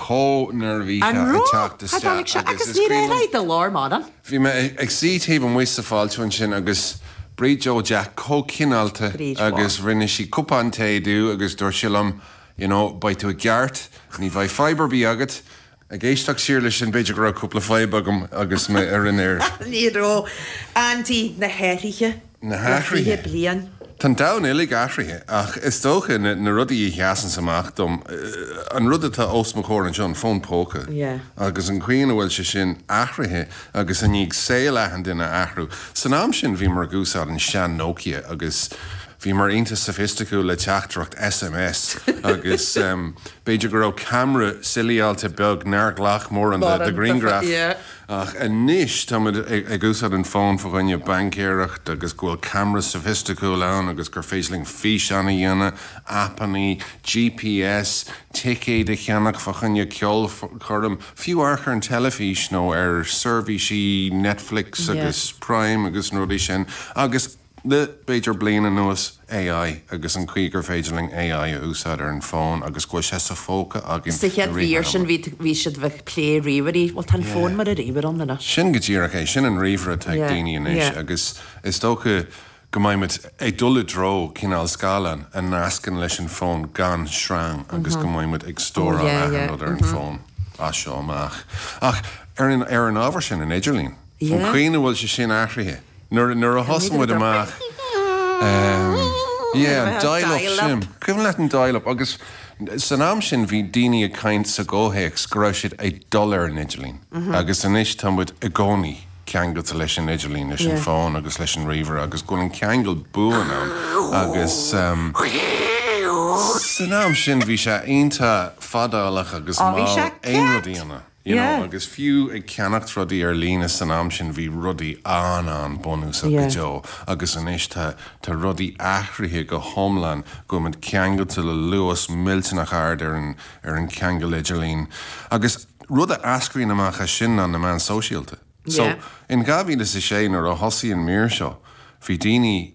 chomh neirbhíseach ag teacht isteach agus is cuimhin liom, bhí mé ag suí taobh amuigh sa fháiltiú ansin agus Bríd Joe Jack chomh cineálta agus rinne sí cupán tae domh agus dúirt sí liom you know beidh tú i gceart, ní bheidh fadhb ar bith agat. Ag éisteacht siar leis sin b'fhéidir go raibh cúpla fadhb agam agus mé ar an aer! Ní raibh. Andy, na hathruithe. na hathruithe. Tá an domhan uilig athruithe ach is dócha na rudaí a sheasanns amach dom, an rud atá os mo chomhair anseo, an fón póca agus an chaoi ina bhfuil sé sin athruithe agus i ndiaidh saol achan duine a athrú. San am sin bhíomar ag úsáid an sean Nokia agus bhíomar iontach soifisticiúil le teachtaireacht SMS agus b'fhéidir go raibh camera suaraí beag nár ghlac mórán de ghrianghraif. Ach anois táimid ag úsáid an fón fá choinne baincéireacht agus go bhfuil camera sofaisticiúil ann agus gur féidir linn físeáin a dhéanamh, aipeanna, GPS, ticéid a cheannach fá choinne ceolchoirm, fiú amharc ar an teilifís nó ar seirbhísí Netflix agus Prime agus na rudaí sin agus. Le b'fhéidir bliain anuas, AI agus an chaoi gur féidir linn AI a úsáid ar an fón agus go bhfuil sé sa phóca againn i rith an ama. Sa chéad mhír sin, bhí sibh ag plé ríomhairí. Bhuel, tá an fón mar an ríomhaire ann anois. Sin go díreach é. Sin an ríomhaire atá ag daoine anois agus is dócha go mbeimid ag dul i dtreo cineál scáileáin a nascann leis an fón gan sreang agus go mbeimid ag stóráil achan rud ar an bhfón as seo amach. Ach ar an ábhar sin, an t-idirlíon? An chaoi ina bhfuil sé sin athruithe, nuair a thosaigh muid amach, yeah, an dial up sin, cuimhin leat an dial up? Agus san am sin bhí daoine ag caint sa gcomhthéacs go raibh siad ag dul ar an idirlíon agus anois tá muid i gcónaí ceangailte leis an idirlíon, leis an bhfón agus leis an ríomhaire agus go bhfuil an ceangal buan ann agus san am sin bhí sé iontach fadálach agus mall aon rud a dhéanamh. you know, Yeah. agus fiú ag ceannacht rudaí ar líne san am sin bhí rudaí an-an-bhunúsach go Yeah. deo agus anois tá, tá rudaí athruithe go hiomlán go bhfuil muid ceangailte le luas millteanach ard ar an, ar an cheangal idirlín agus rud a eascraíonn amach as sin ná na meáin sóisialta. So Yeah. in 2006 nuair a thosaigh an mír seo bhí daoine,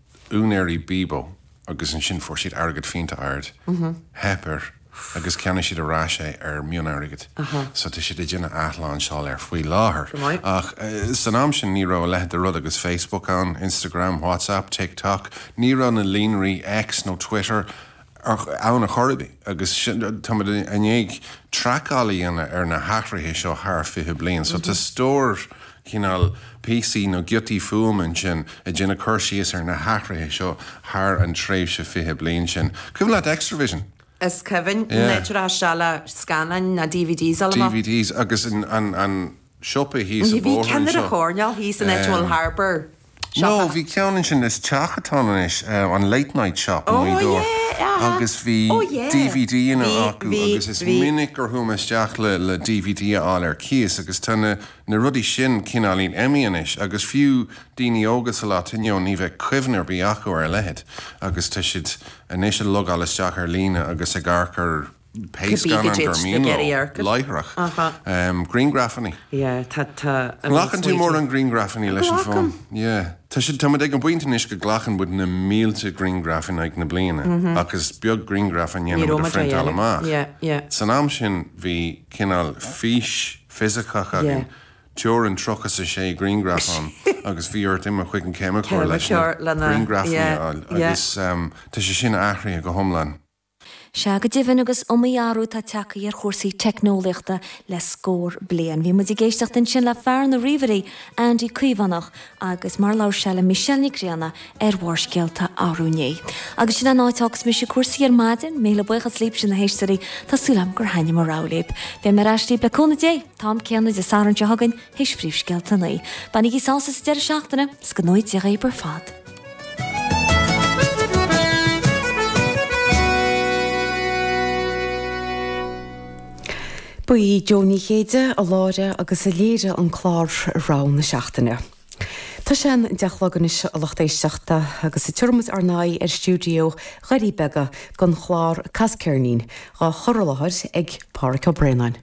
úinéirí Bebo agus ansin fuair siad airgead iontach ard, theip air agus cheannaigh siad ar ais é ar mhionairgead so tá siad ag déanamh athlainseáil air faoi láthair ach san am sin ní raibh a leithid de rud agus Facebook ann, Instagram, Whatsapp, TikTok, ní raibh na líonraí X nó Twitter ann ar chor ar bith agus táimid i ndiaidh traiceáil a dhéanamh ar na hathruithe seo thar 20 bliain so tá stór cineál píosaí nó giotaí fuaime ansin ag déanamh cur síos ar na hathruithe seo thar an tréimhse 20 bliain sin. Cuimhin leat Xtra-vision? Is cuimhin. Yeah. Níor fhreastail sé le scannáin ná DVDs a lomán. DVDs agus an siopa thíos an bóthar anseo. Bhí ceann ar an choirnéal thíos an áit a bhfuil Harbour. No, bhí ceann ansin is teach atá ann anois, an Late Night Shop i nGaoth Dobhair agus bhí dvd ann acu agus is minic gur chuaigh mé isteach le dvd a fháil ar cíos agus tá na rudaí sin cineál imithe anois agus fiú daoine óga sa lá atá inniu ní bheadh cuimhne ar bith acu ar a leithéid agus tá siad anois ag logáil isteach ar líne agus ag amharc ar Pé scannán gur mian leo láithreach, grianghrafanna. An nglacann tú mórán grianghrafanna leis an bhfón? Glacaim. Tá siad, táimid ag an bpointe anois go nglacann muid na mílte grianghraf in aghaidh na bliana ach is beag grianghraf a ndéanaimid a phriontáil amach. San am sin bhí cineál fís fisiceach againn, teorainn 36 grianghraf ann agus bhí ort imeacht chuig an ceimiceoir leis na grianghrafanna a fháil agus tá sé sin athraithe go hiomlán. Sea go deimhin agus is iomaí athrú atá tagtha ar chúrsaí teicneolaíochta le scór bliain. Bhí muid ag éisteacht ansin le fear na ríomhairí, Andy Caomhánach, agus mar a labhair sé le Michelle Nic Grianna ar Bharrscéalta arú inné. Agus sin an áit a fhágfas mise cúrsaí ar maidin. Míle buíochas libhse na héisteoirí, tá súil agam gur thaitin mo rogha libh. Beidh mé ar ais libh le cúnamh Dé, an t-am céanna Dé Sathairn seo chugainn, tar éis phríomhscéalta a naoi. Bainigí sásamh sa deireadh seachtaine, is go ngnóthaí Dia dhaoibh ar fad. Ba í Jó Ní Chéide a láithrigh agus a léirigh an clár Rogha na Seachtaine. Tá sé an deich a chlog anois a lucht éisteachta agus tabharfaidh muid ár n-aghaidh ar stiúideo Dhoirí Beaga don chlár Cas Ceirnín, dhá chur i láthair ag Páraic Ó Braonáin.